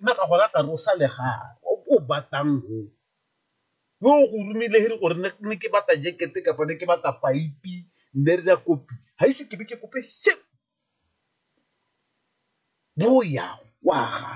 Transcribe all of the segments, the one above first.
nna ka gona ka re o sa lega o batang o, yo o go romile he re gore ne ke bata jekete kapa ne ke bata paipi ne re ja kopi ga ise ke be ke kope shame bo o yang o a ga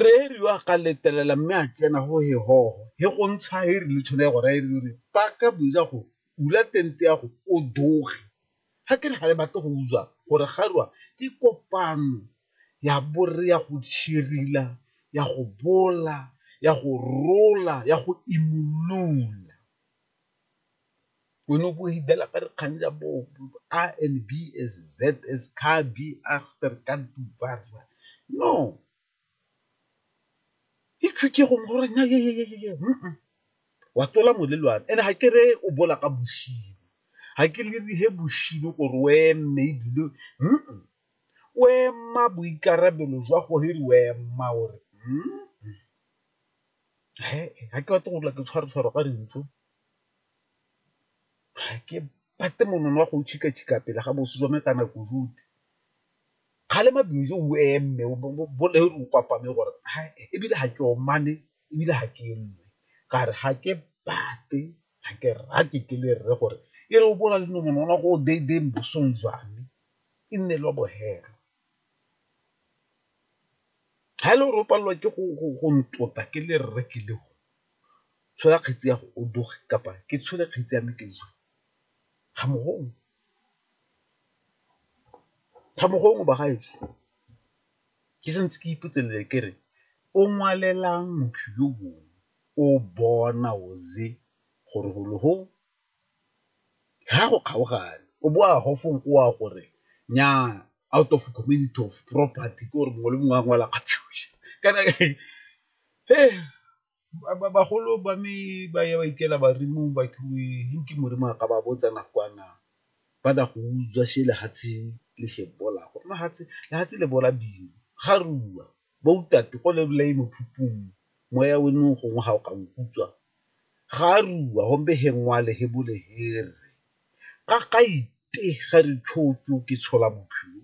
re re yo a ka letelela mme a tsena go he hoho he go ntsha he re le tsholo ya go raya e re paka boja go bula tente ya go o doge. Ga ke re ga le batle go utlwa gore Kgarua ke kopano ya borre ya go tšhirila, ya go bola, ya go rola, ya go imolola. Wena o bo o hidela ka dikgang tsa bo A and B as Z as ka B after ka du ba ra. No, e tlhokegong gore na yeyeyeye wa tlola molelwane and-e ga ke re o bola ka boshimo ga ke lerihe boshimo gore o eme ebile o ema boikarabelo jwa gore re o ema ore ga ke batle gorela ke tshwaretshwaro ka dintso ga ke bate monono wa go tšhikatšhika pele ga boso jwa me ka nako jotlhe Kgalema Beauty o eme o boleru o kwapame gore ebile ga ke omane ebile ga ke lle ka re ga ke bate ga ke rate ke le rre gore e re o bo o na le nomonono go day day bosong jwa me e nne le wa bohelo. Ga e le gore o palelwa ke go ntota ke le rre ke le o tshola kgetsi ya go o doge kapa ke tshole kgetsi ya me ke . Thabo gongwe bagaetsho ke sa ntse ke ipotselele ke re o ngwalelang motho yo mongwe o bona o ze gore golo go ga go kgaogane o bo a gofong o a gore nyaa out of community of property ke gore mongwe le mongwe a ngwala kana . Bagolo ba me ba ya ba ikela ba re mo ke modimo a ka ba botsa nakwana ba tla go utswa she lefatshe le she bola gore lefatshe le bola bima ga re bua ba utlwa te go le bolai mokhukhung moya o ne o gongwe ga o ka nkutswa ga re bua gombe he ngwale he bole he re ka ga ite ga re ke tshola bophelo.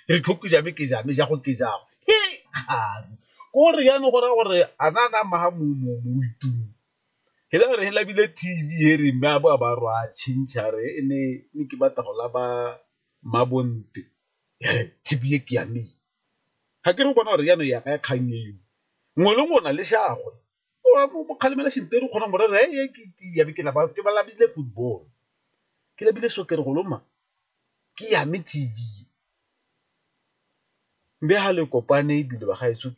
re tlhoke jame ke jame jago ke jago he kgang ko re yana go raya gore a na na maga mo mo mo itung he la re he labile TV he re mme a bo a ba rwa change re e ne ne ke batla go la ba mabonte TV e ke ya me ga ke re bona gore yana ya ka ya kgang eo ngwe le ngwe o na le shagwe o kgalemela senteru kgona morero e ke ba labile football ke lebile soccer go loma ke yame T_V mme ga le kopane ebile ba gaetsho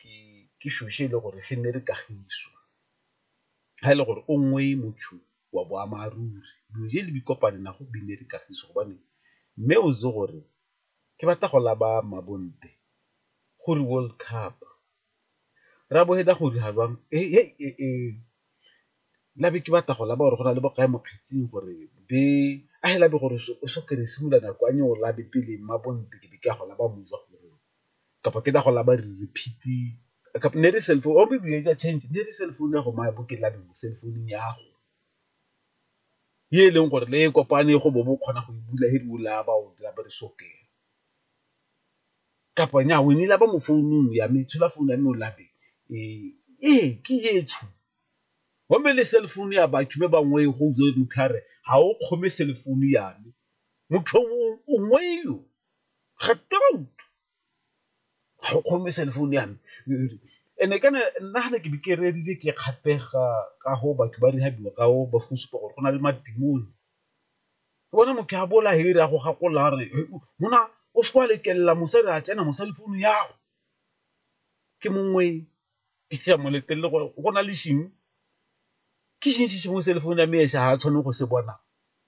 ke shweshwe e le gore se nne le kagiso ga e le gore o nngwe motho wa boammaaruri dilo je le di kopane na go bine le kagiso gobane mme o itse gore ke batla go laba mmabontle go re World Cup Rrabo fetsa go dira jwang labe ke batla go laba gore go na le bo kae mo kgetsing gore be a fela be gore o so kry-e simolola nako ya o labe pele mma bo ntse ke be ke a go laba mmu jwa gore kapa ke tla go laba re repeat-e kapa ne e le cell phone or maybe e etsa change ne e le cell phone ya go maya bo ke labe mo cell phone-ung ya go e e leng gore le e kopane go bo bo kgona go e bula he di o laba o labe re so kry-e. kapa nyaa o nnile ba mo founung ya me tshola founu ya me o lape ee ke etsho gomme le cell phone ya batho ba bangwe go utlwe motho a re ga o kgome cell phone ya me motho o ngwe yo ga torout ga o kgome cell phone ya me and-e kana nna ga ne ke be ke rerile ke kgatlhega ka go batho ba rehab-iwa ka go ba go supa gore go na le madimone ke bona motho a bola here a go gakola re mona o se kwa lekelela mosadi a tsena mo cell phone ya go ke mongwe ke ja mo letelele gore go na le sheng ke sheng se sengwe cell phone ya me esa ha tshwane go se bona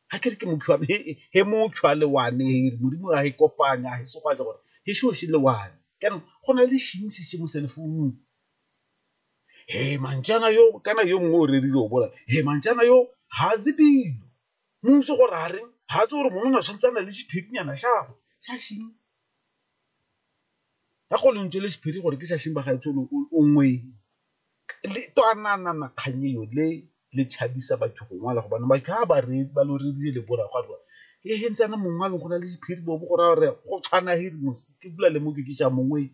ga ke re ke motho wa me he motho a le one here modimo a e kopanya he se go a gore he sho shi le one kana go na le sheng se se mo cell phone He manjana yo kana yo mongwe o redile o bola he manjana yo ha ze dilo muso gore a reng ha tse gore monona o tshwanetse a na le sephirinyana shagwe shashing ya go lentswe le sephiri gore ke shashing ba gaetsho o ngweng le twananana kgang eo le le tshabisa batho go ngwala gobane ba ka ba re ba lo redile le bola gwa rwa e he ntsana mongwe a leng go na le sephiri bo go ra re go tshwana he ke bula le mo ke ke ja mongwe